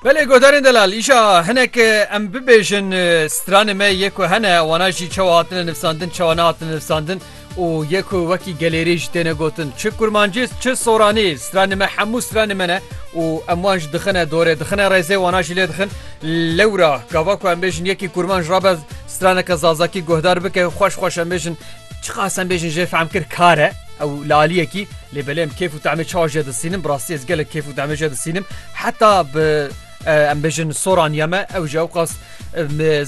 Belê godarên delal îşa hinek em bibêjin stranê me yê ku hene wana jî çawa hatine nivsandin çawa nehatine nivsandin û yê ku wekî gelêrê jî têne gotin çi kurmancî çi soranî stranê me hemû stranê me ne û em wan ji dixine dorê dixine rêzê wana jî lê dixin lewra gava ku em bêjin yekî kurmanj rabe straneke zazakî guhdar bike xweş xweş em bêjin Çiqas em bêjin jê fehm kir kar e ew laliyekî lê belê em kêf û temê çawa jê disînim bi rastî ez gelek kêf û temê jê disînim heta bi em bêjin soran ya me ew ji ew qas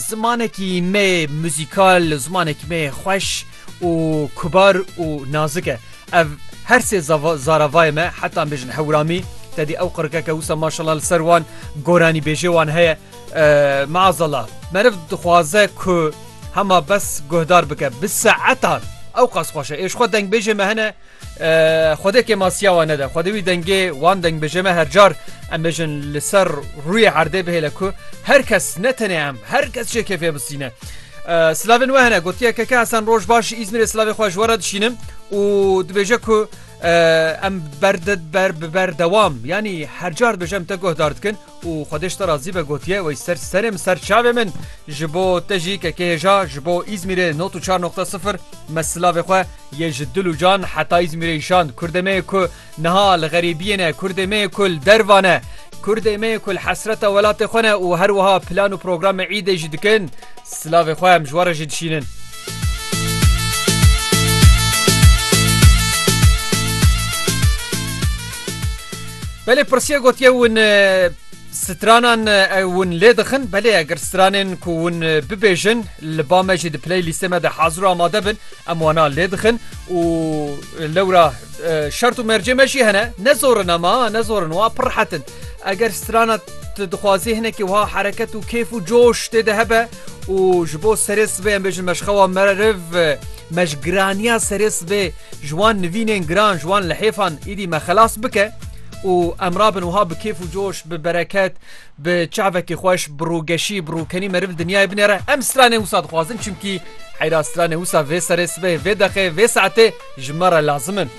zimanekî me muzîkal zimanekî me xweş û kubar û nazik e ev her sê zaravayê me heta em bêjin hewramî tedî ew qirikeke wisa maşallah li ser wan goranî bêjê wan heye Maazallah meriv dixwaze ku hema bes guhdar bike bi saetan ew qas xweş e. Ê ji xwe dengbêjê me hene Xwedê kê ma siyawa nede. Xwedê wî dengê wan dengbêjê me her car em bêjin li ser rûyê erdê bihêle ku her kes ne tenê em her kes jê kêfê bisîne. Silavên we hene gotiye keke Hesen roj baş ji Îzmîrê silavê xwe ji we re dişînim û dibêje ku em berde ber bi berdewam yanî her car dibêje em te guhdar dikin Û Xwedê ji te razî be gotiye wey ser serê min ser çavê min ji bo te jî kekê hêja ji bo Îzmîrê not û çar noqta sifir me silavê xwe yê ji dil û can heta Îzmîrê îşand Kurdê me yê ku niha li xerîbiyê ne Kurdê me yê ku li derva ne Kurdê me yê ku li hesreta welatê xwe ne û her wiha plan û programê îdê jî dikin silavê xwe em ji we re jî dişînin. Belê pirsiya gotiye hûn stranan hûn lê dixin belê eger stranên ku hûn bibêjin li ba me jî di play lîstê me de hazir û amade bin em wana lê dixin û lewra şert û mercê me jî hene ne zorin ama ne zorin wa pir rehetin. Eger strana tu dixwazî hinekî wiha hereket û kêf û coş tê de hebe û ji bo serê sibê em bêjin meşxewa meriv me ji giraniya serê sibê ji wan nivînên giran ji wan lihêfan îdî me xelas bike û em rabin wiha bi kêf û coş bi bereket bi çavekî xweş bi rûgeşî bi rûkenî meriv li dinyayê binêre em stranê wisa dixwazin çimkî heyra stranê wisa vê serê sibê vê deqê vê saetê ji me re lazim in.